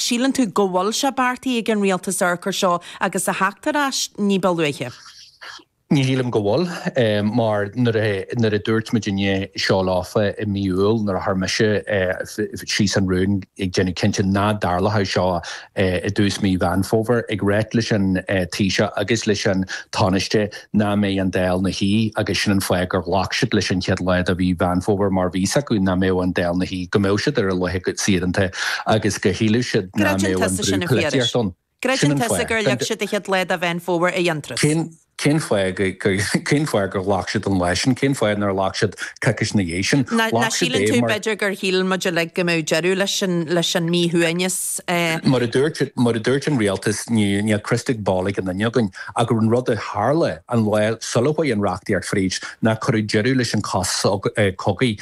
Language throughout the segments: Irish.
Síleann tú go bhfuil sé beartaithe ag an Rialtas urchair seo agus a theacht ar ais ní ba luaithe? Ní shílim go bhfuil, mar nuair a dúirt muidinne seo leofa i mí Iúil nuair a chuir mise síos an rún a dhéanfadh cinnte nach dtarlódh seo i dtús mí Mheán Fómhair, ag ráit leis an Taoiseach agus leis an Tánaiste, nach mbeidh an Dáil na shuí agus sin an fáth gur ghlac siad leis an chéad lá de mhí Mheán Fómhair mar bhí 's acu nach mbeadh an Dáil na shuí, go mbeadh siad ar a laethe saoire agus go sílfeadh siad nach Creideann mbeadh an tusa brú sin a Phiarais? poilitíocht ann. Sin Creideann an tusa fáth. gur leag siad an chéad lá de Mheán Fómhair d'aon turas? Cén cén fáth go go cén fáth gur ghlac siad an lá sin? Cén fáth nár ghlac siad coicís na dhiaidh sin? Nach Ghlac siad síleann é tú mar. b'fhéidir gur shíl muid uilig go mbeadh deireadh leis an leis an míshuaimhneas? Mar a dúirt an Rialtas, níl crystal ball ag aon duine againn, ach an rud a tharla an lá sula chuaigh an reachtaíocht fríd ná cuireadh deireadh leis an sos cogaidh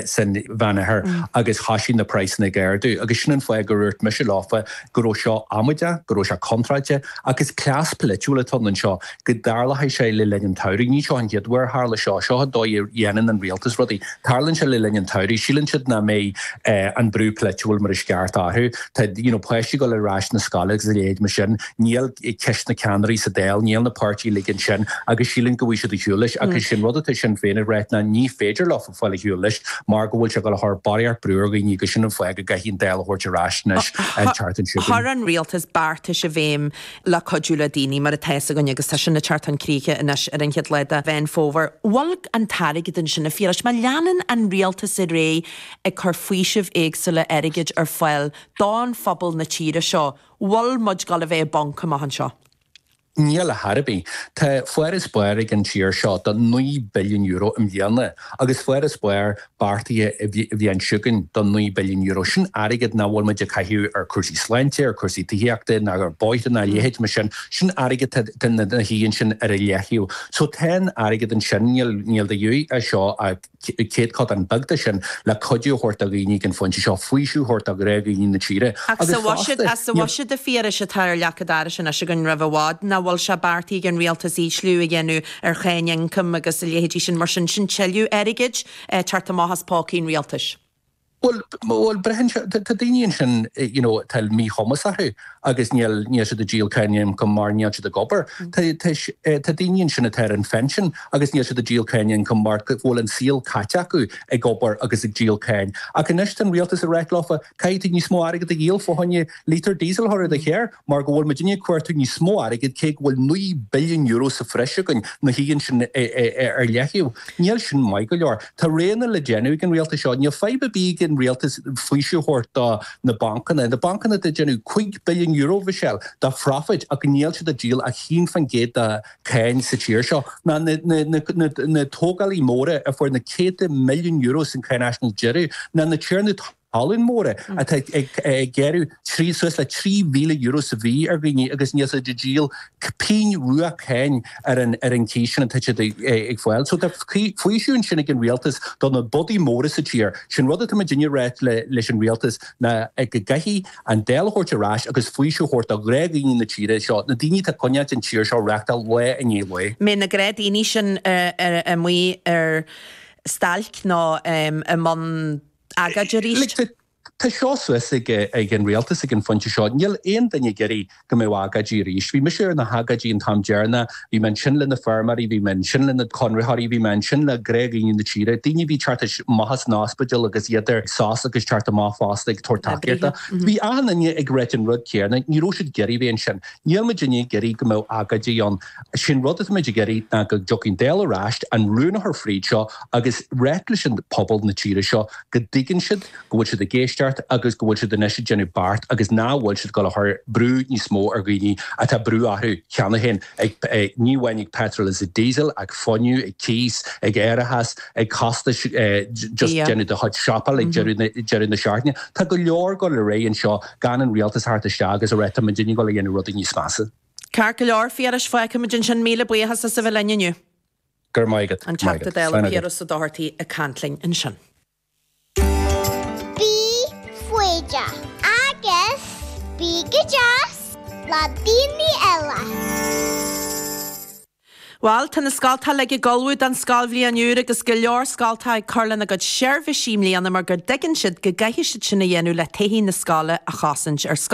san Mheánoirthear agus thoisigh na praghsanna ag ardú agus sin an fáth gur úrt mise leofa go raibh seo amaideach, go raibh sé contráilte ach is cleas poilitiúil atá anseo. go dtarlóidh sé le linn an tsamhraidh. Ní seo an chéad uair a tharla seo. Seo an dóigh a dhéanann an rialtas rudaí. Tarlaíonn sé le linn an tsamhraidh. Síleann siad nach mbeidh an brú polaitiúil mar is ceart orthu. Tá you know páistí ag dul ar ais na scoile agus a leithéid mar sin. Níl ceisteanna ceannairí sa Dáil, níl na páirtithe uilig ansin agus síleann go bhfaighidh siad ar shiúl leis agus sin rud atá Sinn Féin ag rá ná ní féidir leofa fáil ar shiúl leis mar go bhfuil sé ag dul a chur barraíocht brú ar dhaoine agus sin an fáth go gcaithfidh an Dáil a thabhairt ar ais anois an tseachtain seo. Chuir an rialtas beartais i bhfeidhm le cuidiú le daoine mar atá fhios againn agus tá sin ag teacht chun críche anois ar an chéad lá de Mheán Fómhair. Bhfuil an t-airgead ansin, a Phiarais. Má leanann an rialtas ar aghaidh ag cur faoisimh éagsúla airgid ar fáil don phobal na tíre seo, bhfuil muid ag dul a bheith i bponc amach anseo. Níl ar chor ar bith. Tá farasbarr ag an tír seo de €9 billiún i mbliana agus farasbarr beartaithe an bhliain seo chugainn de €9 billiún, sin airgead nach bhfuil muid ag caitheamh ar chúrsaí sláinte, ar chúrsaí tithíochta ná ar bhóithre ná a leithéid mar sin, sin airgead atá ina shuí ansin ar leataobh. So tá an airgead ansin, níl de dhíth as seo ach céatadán beag de sin le cuidiú a thabhairt do dhaoine ag an phointe seo, faoiseamh a thabhairt do ghnáthdhaoine na tíre. Ach sa bhuiséad a Phiarais atá ar leac an dorais anois againn roimh i bhfad, nach bhfuil sé beartaithe ag an rialtas ísliú a dhéanamh ar cháin ioncaim agus a leithéidí sin mar sin, sin tuilleadh airgid ag teacht amach as pócaí an rialtais. Bhuel, bhuel, braitheann sé, tá daoine ansin, you know, atá míchumas orthu agus níl, níl siad ag díol cáin ioncaim mar níl siad ag obair. Tá, tá, tá daoine ansin atá ar an phinsean agus níl siad ag díol cáin ioncaim mar go bhfuil an saol caite acu ag obair agus ag díol cáin. Ach anois tá an rialtas ag ráit leofa, caithfidh tú níos mó airgead a dhíol fá choinne lítear diesel a chur i do charr. mar go bhfuil muidinne ag cuartú níos mó airgid, cé go bhfuil €9 billiún sa bhreis againn, nó thig linn sin ar leataobh. Níl sin maith go leor. Tá roghanna le déanamh ag an rialtas seo. Níl fadhb ar bith ag an rialtas faoiseamh a thabhairt do na bancanna. Na bancanna ag déanamh €5 billiún, Mhichelle, de phrofit ach níl siad ag díol ach 1 faoin gcéad de cháin sa tír seo. Ná na tógálaithe móra a fuair na céadta milliún euro san cháinaisnéis deireadh, ná na tiarnaí talún. talún móra atá ag gearradh trí suas le €3,000 sa mhí ar dhaoine agus níl siad ag díol pingin rua cáin ar an ar an cíos sin atá siad ag fáil. So tá faoiseamh ansin ag an Rialtas do na bodaigh móra sa tír. Sin rud atá muidinne a ráit leis an Rialtas ná go gcaithfidh an Dáil a thabhairt ar ais agus faoiseamh a thabhairt do ghnáthdhaoine na tíre seo, na daoine atá ag coinneáilt an tír seo ag reáchtáil lá i ndiaidh lae. An mbeidh na gnáthdhaoine sin amuigh ar stailc nó i mbun agóidí arís. Tá seo suas ag an rialtas ag an phointe seo. Níl aon duine ag iarraidh go mbeadh agóidí arís. Bhí mise ar na hagóidí an t-am deireanach, bhí mé ansin le na feirmeoirí, bhí mé ansin le na conraitheoirí, bhí mé ansin le gnáthdhaoine na tíre, daoine a bhí ag teacht amach as an ospidéal agus iad ar sos agus ag teacht amach fosta ag tabhairt tacaíochta. Bhí achan duine ag ráit an rud céanna, ní raibh siad ag iarraidh a bheith ansin. Níl muidinne ag iarraidh go mbeadh agóidí ann. Sé'n rud atá muid ag iarraidh ná go dtiocfaidh an Dáil ar ais, an rún a chur fríd seo agus ráit leis an pobal na tíre seo go dtuigeann siad go bhfuil siad ag éisteacht agus go bhfuil siad anois ag déanamh beart agus nach bhfuil siad ag dul a chur brú níos mó ar dhaoine atá brú orthu cheana féin ag ní amháin ag petrol is ag diesel, ag fuinneamh, ag cíos, ag árachas, ag costais just déanamh do chuid siopa ag deireadh na seachtaine. Tá go leor ag dul ar aghaidh anseo gan an rialtas a theacht isteach agus a ráit tá muidinne ag dul a dhéanamh rudaí níos measa. Ceart go leor, Phiarais, feicfimid ansin, míle buíochas as a bheith linn inniu. Go raibh maith agat. An Teachta Dála Slán agat. Piaras Ó Dochartaigh ag caint linn ansin. Bí foighdeach agus bí go deas le daoine eile. Bhal, tá na scoltacha uilig ag ullmhú don scoilbhliain úr agus go leor scoltacha ag cur lena gcuid seirbhísí i mbliana mar gur dtuigeann siad go gcaithfidh siad sin a dhéanamh le todhchaí na scoile a chosaint ar scoil.